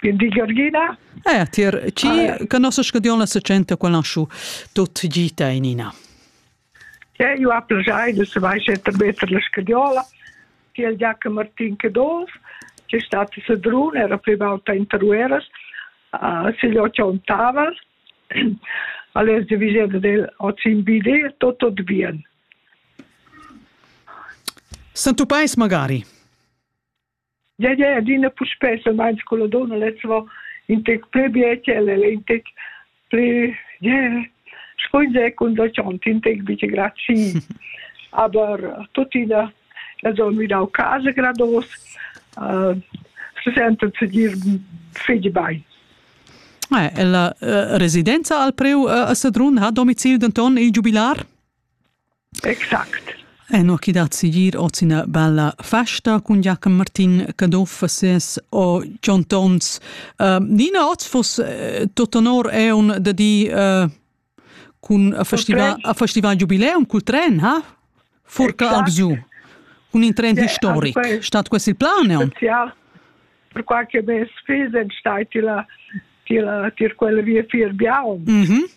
Di Georgina? Eh, tier chi ah, conosces che Dion la secenta qual naschu tut gita in ina? Ja, io ha piacere de se vai setter better la scadiola, che il Giacomo Martin che dos, che è stato se drun, era più volta in Tarueras, uh, se gli ho ciontaval, alles de visita del Ozimbide tutto de Vien. Santo Pais magari? Ja, ja, adina puspè semain sco la donna lez va in tec pli biechel e in tec pli, ja, scuinzè cunzachont, in tec biche grazi. Aber tuttina, also midau casa grados, uh, se sentan se dir figli bain. Eh, la uh, residenza al preu uh, a Sadrun ha domicil denton il giubilar? Exact. Eno chi dat sigir hoz üna bella festa cun Giachen Martin Caduff e ses o Jon Tons. Uh, Nina, hoz fuss uh, tot onor eun da dir uh, cun a festival, a festival giubileum cul tren, ha? Furcla exact. albgiu. Cun in tren yeah, historic. Stat quest il plan, eun? Ja, per qua che mes figls en stai tila tila tir quel via fir biaum. Mhm. Mm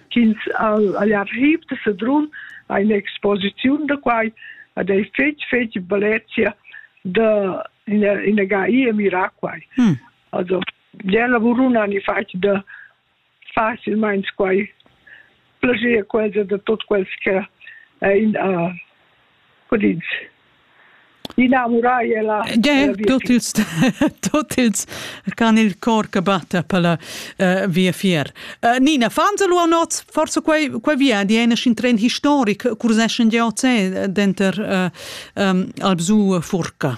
ch'ins ha arriv da Sedrun ha un'exposiziun da quai ed ei fetg fetg bellezia da ina, ina gai e mirar quai. Mm. Also, der lavurun han fatg da facilmeins quai plager quels da tot quels che ein a Tut ils tut ils can il cor che batta per la uh, viafier. Uh, Nina, fans lu anot, forse quei quei via di eine in tren historic, curseschen di oce denter uh, um, Alpsu Furca.